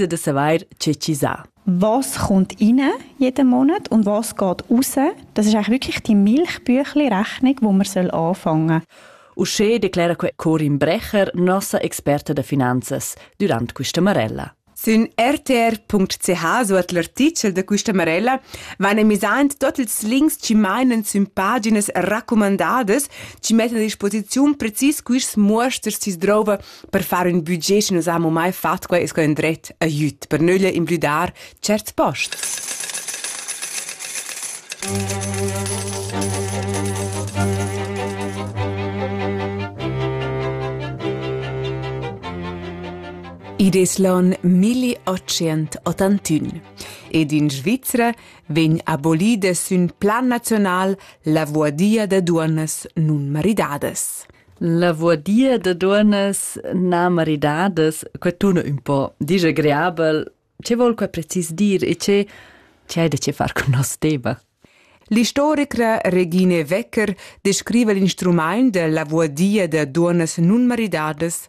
e da savair che chi sa. Was kommt rein jeden Monat und was geht raus? Das ist eigentlich wirklich die Milchbüchli-Rechnung, wo man anfangen soll. Uschè declera que Corin Brecher, nossa Experte de Finanzes, durant questa Marella. Sün rtr.ch suot l'artichel da questa Marella van emisaint tot ils links chi mainen sün paginas raccomandadas, chi mettan a disposiziun precis quist muosters chi s'drouva Per far ün budget chi nus hamu mai fat quai es quai ün dret aiüt per nöglie imblüdar tscherts posts. Id es l'on 1881 ed in Svizra vegn abolida sün plan nazional la vuadia da duonnas nun maridadas. Lavaurdia da duonnas na maridadas, que tuna ün po disagreabel. Che vol que precis dir e che che hai da che far con nos tema? L'istorica Regine Wecker descriva l'instrumaint da lavaurdia da duonnas nun maridadas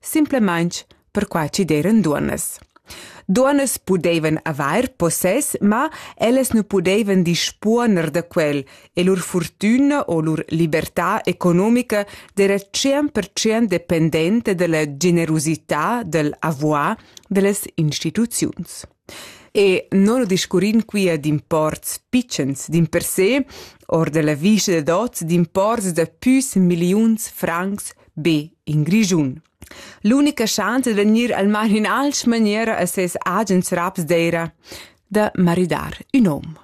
simplamaing perquai chi d'eiran duonnas. Duonnas pudeivan avair possess, ma ellas nu pudeivan dispuoner da quel e lur furtüna o lur libertà economica d'eira 100% dependenta da la generusità dal avoir da las instituziuns. E non discurrin quia d'imports pitschens dimpersè or della vista dad oz d'imports da püs milliuns francs be in Grischun. L'unica chance da gnir al man in alch maniera a ses agens raps d'eira da maridar ün hom.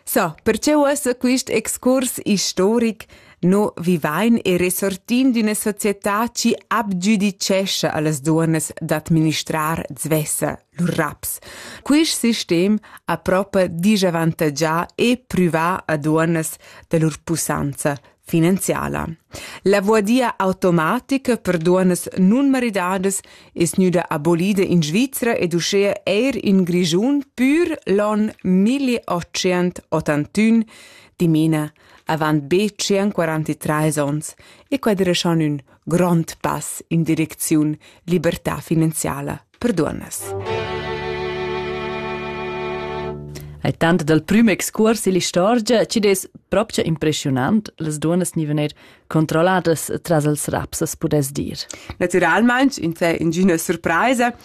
So, perche uossa quist excurs istoric no vivain e resortin d'üna società chi abgiudicescha a las duonnas d'administrar svessa lur raps. Quist sistem ha propa disavantagià e privà a duonnas da lur pussanza finanziala. La voadia automatica per duonnas nun maridadas es gnüda abolida in Svizra ed uschea eir in Grischun pür l'on 1881, dimena avant be 143 ons, e quadreschan ün grond pass in direcziun libertà finanziala. per duonnas. Ai tant dal prüm excurs ill'istorgia chi'd es propcha impreschiunant, las duonnas gnivan eir controlladas tras els raps, as pudess dir. Natüralmaing insè ingüna surpraisa,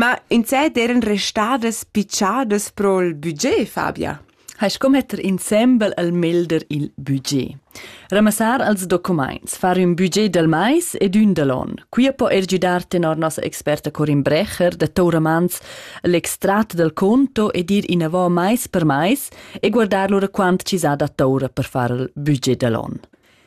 ma insè d'eiran restadas picciadas pro'l budget, Fabia? hai sco metter insembel al melder il budget. Ramassar als documaints, far ün budget dal mais ed ün dal on. Quia po er giudar tenor nossa experta Corin Brecher da Touramanz l'extrat dal conto ed ir inavò mais per mais e guardar lura quant ci s'ha da toura per far il budget dal on.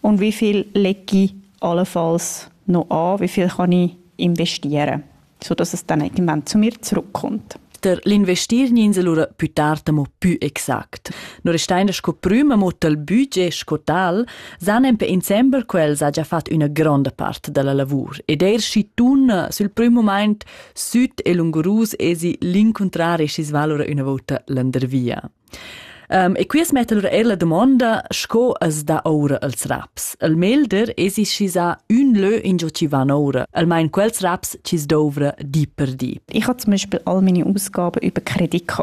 Und wie viel lege ich allenfalls noch an? Wie viel kann ich investieren? Sodass es dann irgendwann zu mir zurückkommt. Der l'investierninsel ora più tard mo più exact. No restein sco prüma mo tal budget sco tal, san en pe insembel quels ha già fatto una grande parte della lavor ed er si tun sul primo moment süd e lungurus esi l'incontrare si svalora una volta landervia. Um, e quias metta lura er la dumonda, sco as dà oura als raps. Il melder esi schi sa ün lö ingio chi van oura, almain quels raps chi's douvra di per di. Ich habe zum Beispiel all meine Ausgaben über Kredit